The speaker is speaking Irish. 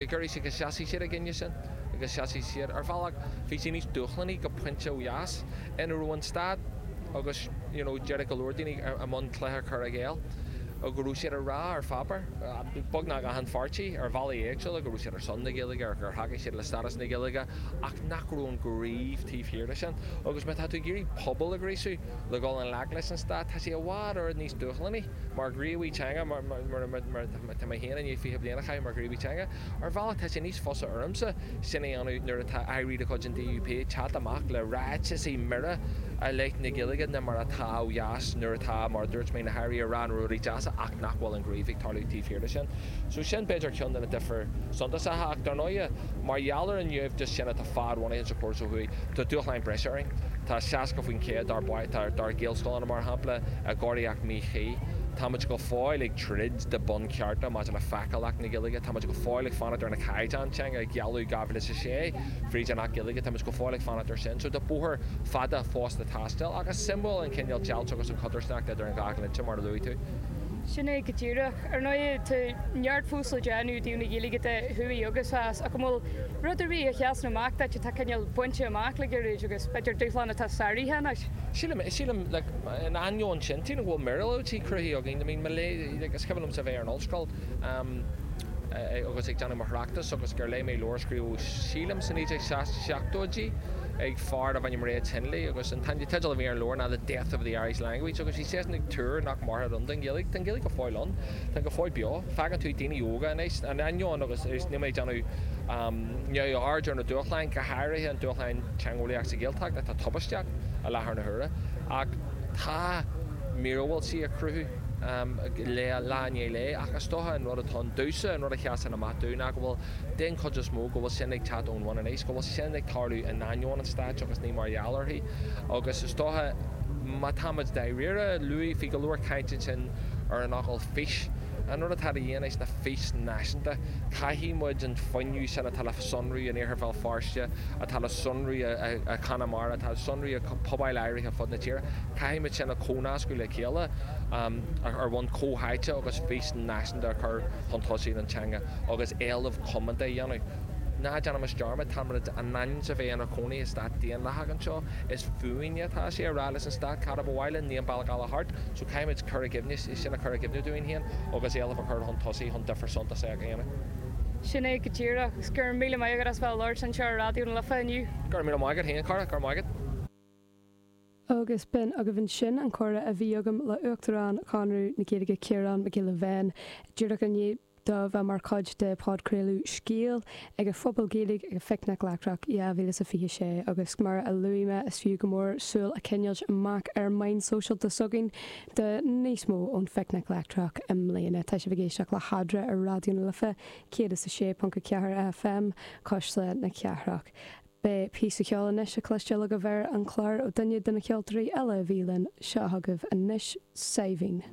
Giúiris agus sheasaigh siad in ainneoin sin agus sheasaigh siad ar bhealach bhí sé níos dúshlánaí go pointe ó dheas ina raibh an stát agus you know d'éirigh go leor daoine i mbun cluiche chur i gcéill a go raibh siad a rá ar pháipéar beagnach achan pháirtí ar bhealaí éagsúla go raibh siad ar son na Gaeilge gur thacaigh siad le stádas na Gaeilge ach nach raibh an gníomh taobh thiar de sin agus má tá tú ag iarraidh pobal a ghríosadh le dhul i ngleic leis an stát tá sé i bhfad oiread níos dúshlánaí mar ghníomhaí teanga mar Tá mé féin i ndiaidh fiche bliain a chaitheamh mar ghníomhaí teanga. Ar bhealach tá sé níos fusa ormsa sin a dhéanamh nuair atá aire de chuid an DUP ag teacht amach le ráiteasaí mire i leith na Gaeilge ná mar atá ó dheas nuair atá, mar a dúirt mé, na hairí ag rá na rudaí deasa ach nach bhfuil an gníomh ag tarlú taobh thiar de sin. So sin b'fhéidir ceann de na difir suntasacha ach, dar ndóighe, mar gheall ar an naimhdeas sin atá fadbhunaithe sa chóras ó thuaidh, tá dúshláin breise orainn. Tá 60% dár bpáistí, dár Ghaelscoileanna mar shampla, i gcóiríocht mhíchuí. Táimid go fóill ag. troid do bhunchearta maidir le feiceálacht na Gaeilge. Táimid go fóill ag fanacht ar na caighdeáin teanga a gealladh 2006 fríd an Acht Gaeilge. Táimid go fóill ag fanacht ar sin. So tá bóthar fada fós le taisteal. Ach is suimiúil an cineál deighilt agus an chodarsnacht idir an dhá dhlínse mar a luaigh tú. Sin é go díreach. Ar ndóigh tá neart fós le déanamh i dtaobh na Gaeilge de, thuaidh agus theas. Ach an bhfuil rud ar bith a sheasann amach duit atá cineál bainte amach le gairid agus b'fhéidir dúshlán atá sáraithe anois? Sílim, sílim, like, In ainneoin sin, sílim go bhfuil míorúiltí cruthaithe againn. I mean, mo léithéid, like, is cuimhin liomsa a bheith ar an ollscoil, em, eh, agus ag déanamh mo thráchtas agus gur léigh mé leabhar a scríobhadh, sílim, sna 1970idí ag fear darbh ainm Reg Hindley agus an teideal a bhí ar an leabhar ná The Death of the Irish Language agus bhí seisean ag tuar nach mairfeadh ann don Ghaeilge. Tá an Ghaeilge go fóill ann. Tá go fóill beo. Faigheann tú daoine óga anois, in ainneoin agus, arís, níl mé ag déanamh, em, neamhaird ar na dúshláin, go háirithe an dúshlán teangeolaíoch sa Ghaeltacht atá tubaisteach. i láthair na huaire, ach tá míorúiltí á gcruthú lá i ndiaidh lae, ach is dócha an rud atá ann domhsa, an rud a sheasann amach domh ná go bhfuil, den chuid is mó, go bhfuil sin ag teacht ón bhun aníos, go bhfuil sin ag tarlú in ainneoin an stáit agus ní mar gheall uirthi. Agus is dócha, má táimid dáiríre, luaigh tú go leor caint ansin ar an fhocal 'fís'. An rud atá de dhíth anois ná fís náisiúnta. Caithfidh muid an fuinneamh sin atá le sonrú in Iarthar Bhéal Feirste, atá le sonrú i gConamara, atá le sonrú i bpobail áirithe ar fud na tíre, caithfidh muid sin a chomhnascadh le chéile ar bhonn comhtháite agus fís náisiúnta a chur chun tosaigh don teanga agus éileamh coitianta a dhéanamh. Ná déanaimis dearmad, tá muid in ainm is a bheith inár gcónaí i stát daonlathach anseo. Is fúinne atá sé a rá leis an stát cad a ba mhaith linn, ní an bealach eile thart. So caithfidh muid cur i gcuimhne. sin a chur i gcuimhne dúinn féin agus éileamh a chur chun tosaigh chun difear suntasach a dhéanamh. Sin é go díreach. Agus go raibh míle maith agat as bheith ag labhairt anseo ar Raidió na Life inniu. Go raibh míle maith agat féin, a chara. Go raibh maith agat. Agus b'in agaibh ansin an comhrá a bhí agam le hUachtarán Chonradh na Gaeilge, Ciarán Mac Giolla Bhéin, díreach i ndiaidh. do bheith mar chuid de podchraoladh Scéal ag an Phuball Gaeilge ag an Phicnic Leictreach 2026 agus mar a luaigh mé is fiú go mór súil a choinneáilt amach ar mheáin sóisialta s'againn do níos mó ón Phicnic Leictreach i mbliana. Tá sibh ag éisteacht le hEadra ar Raidió na Life 106.4 FM Cuisle na Cathrach. Beidh píosa ceoil anois le cloisteáil agaibh ar an chlár ó duine de na ceoltóirí eile a bhí linn. Seo chugaibh anois Saidhbhín.